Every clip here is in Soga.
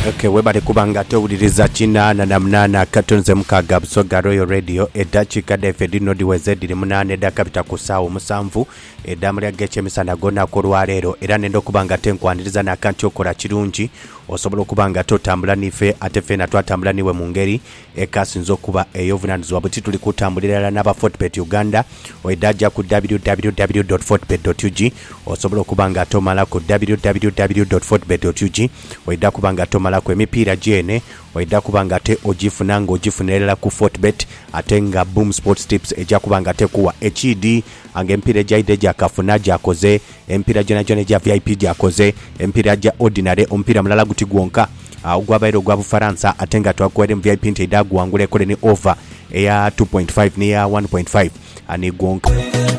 Okay, webale kuba nga towuliriza kinaana na munaana akatu nze mukaaga Busoga Royal Radio eddakiika dhaife dhino dhiweze dhiri munaana edhakabita ku ssaawa omusanvu edh'amalya g'ekyemisana ag'olunaku olwaleero era nenda okuba nga tenkwaniriza n'akanti okola kirungi osobola okuba nga ate otambula n'ife ate feena twatambula niwe mu ngeri Ekasinze okuba ey'obuvunaanyizibwa buti tuli kutambulira irala n'aba Fortebet Uganda. Oidhaja ku www dot fortebet dot ug osobola okuba nga ate omalaku www dot fortebet dot ug oidha kuba nga ate omalaku emipiira gyeene oidha kuba nga ate ogifuna nga ogifunira irala ku Fortebet ate nga Boom Sports Tips eja kuba nga ate ekuwa ekiidhi nga emipiira egyaidha egyakafuna gyakoze Emipiira gyonagyona egya vip gyakoze emipiira gya ordinary, omupiira mulala guti gwonka ogwabaire ogwa Bufaransa ate nga twakuwaire mu vip nti aidha guwangula ekole ni over eya two point five n'eya one point five ni gwonka.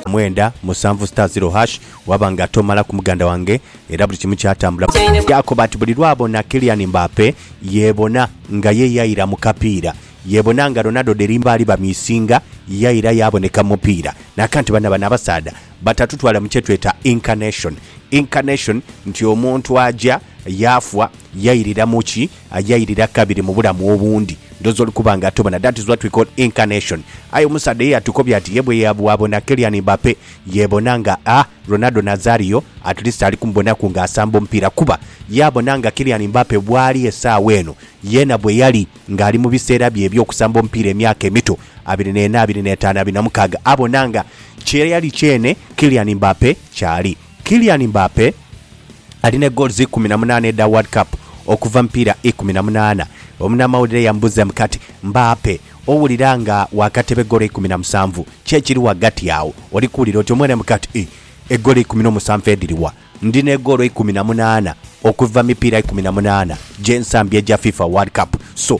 Mwenda, musanvu star zero hash waba nga tomalaku muganda wange era buli kimu kyatambula. Yaakoba ati buli lwabona Kylian Mbappe yeebona nga ye yaira mu kapiira, yeebona nga Ronaldo dheri mbaali bamiisinga yaira yaaboneka mu mupiira. Naakanti banno bano abasaadha batatutwala mu kye tweta Incarnation. Incarnation nti omuntu aja, yaafwa, yairira mu ki, yairira kabiri mu bulamu obundi. Ndhooza oli kuba nga atubona. That is what we call Incarnation. Aye omusaadha ye yatukobya ati ye bwabona Kylian Mbappe yeebona nga a Ronaldo Nazario, at least ali kumubonaku ng'asamba omupiira kuba yaabona nga Kylian Mbappe bw'ali esaawa eno, yeena bwe yali. ng'ali mu biseera bye eby'okusamba omupiira emyaka emito, abiri n'ena, abiri n'etaanu, abiri na mukaaga, abona nga kye yali kyene Kylian Mbappe ky'ali. Kylian Mbappe ali ne goals ikumi na munaana edha World Cup okuva mipiira ikumi na munaana. Omunamawulire yamubuzaamu kati, Mbappe, owulira nga waakateba eggolo eikumi na musanvu? Ki ekiri ghagati agho? Oli kuwulira otya? Omwene mu kati, Ih, eggolo eikumi n'omusanvu edhiri wa? Ndi ne goolo ikumi na munaana okuva mipiira ikumi na munaana gye nsambye egya fifa world cup so